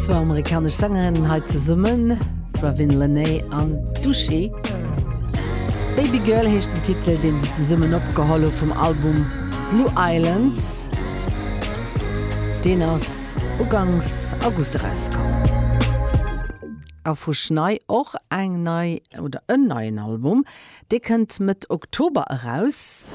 Zwou amerikanesch Sängerinnen hei zesummen, d'Ravin Lenae an d'Duschi. Baby Girl heescht den Titel, deen se zesummen opgeholl hu vum Album Blue Island. Deen ass ugangs August erauskomm. A vu Schnei och eng nei oder en neien Album, Dee kënnt Mëtt Oktober eraus.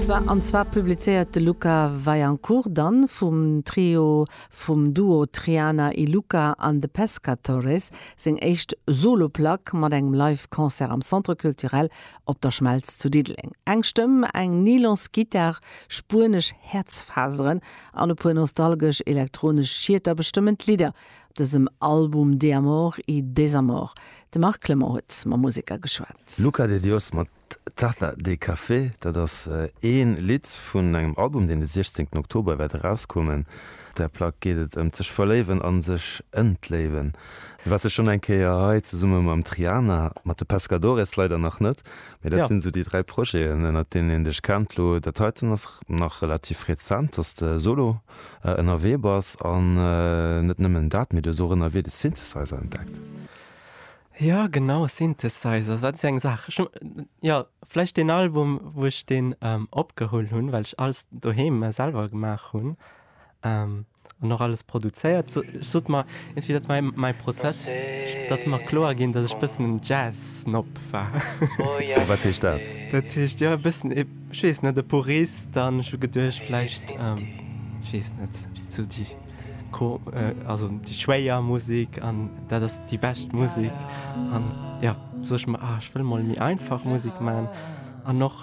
Zwar an zwar publizéiert de Luca Vaillancourt dann vum Trio, vum Duo Triana y Luca an The Pescatores, seng éischt Solo-Plack mat engem Live Concert am Centre Culturel Op der Schmelz zu Diddeleng. Eng Stëmm, eng Nylons-Gittar, spuenesch Häerzfaseren an e puer nostalgesch elektronesch Schieter bestëmmen d'Lidder, Dësem Album De Amor y Desamor. De Marc Clement huet mam Museker geschwat. Luca de Dios mat Taza de Café, dat ass ee Lidd vun engem Album, deen de 16 Oktober wäert erauskommen. Op där Plack geet et ëm d'sech verléiwen a sech entléiwen. Du waars jo schonn eng Kéier hei zesumme mam Triana, mat de Pescadores leider nach net, mee dat sinn esou déi dräi Projeten, ënnert deenen een dech kennt. Lo dat heiten ass nach relativ rezent, dass de solo ënnerwee bass an net nëmmen dat, mee du hues och ënnerwee de Synthesizer entdeckt. Jo genau, Synthesizer, wat si eng Saach. Ech hunn jo vläicht deen Album, wou ech deen opgeholl hunn, well ech alles doheem selwer gemaach hunn an och alles produzéiert. Ech sot mer iergendwéi, dat war mäi Prozess, datt mer kloer ginn, datt ech e bëssen en Jazz-Snob war. Wat heescht dat? Dat heescht, jo e bëssen e. Ech weess net, e Purist, an ech hu geduecht vläicht, ech weess net, sou déi ko, also déi schwéier Musek an dat ass déi bescht Musek. An jo, sot ech mer, ah ech wëll emol méi einfach Musek man an och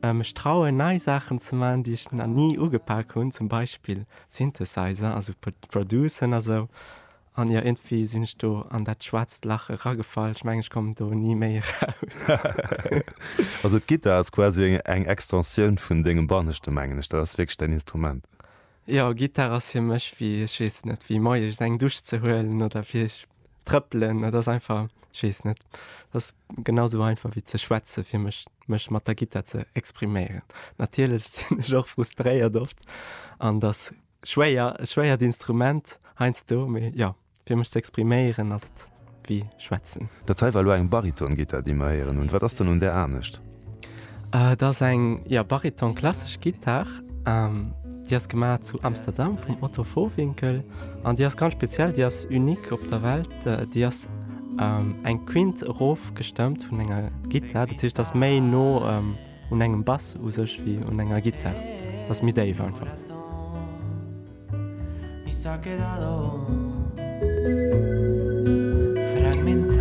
mech trauen nei Saachen ze man, déi ech na ni ugepak hunn, zum Beispill Synthesizer, also pro, producen a sou. An jo, iergendwéi sinn ech do an dat schwaarzt Lach eragefall. Ech mengen, ech kommen do ni méi eraus. Also d'Gittar ass quasi eng Extensioun vun dengem Banneschte, mengen ech. Dat ass wierklech däin Instrument. Jo, Gittar ass fir mech wéi, ech weess et net, wéi moies eng Dusch ze huelen oder fir ech trëppelen. Dat ass einfach, ech weess et net. Dat ass genau esou einfach wéi ze schwätzen, fir mech, mech mat der Gittar ze expriméieren. Natierlech sinn ech och frustréiert oft an dass Schwéier, e schwéiert Instrument heiansdo, mee jo, fir mech ze expriméieren ass et wéi schwätzen. Dat hei war elo eng Bariton-Gittar, déi mer héieren hunn. Wat ass dann un där anescht? Et ass eng, jo, Bariton klassesch Gittar. Déi ass gemaach zu Amsterdam vum Otto Vohwinkel an déi ass ganz speziell, déi ass unique op der Welt. Déi ass eng Quinte erofgestëmmt vun enger Gittar, dat heescht, ass méi no, un engem Bass u sech wéi un enger Gittar, ass méi déif einfach.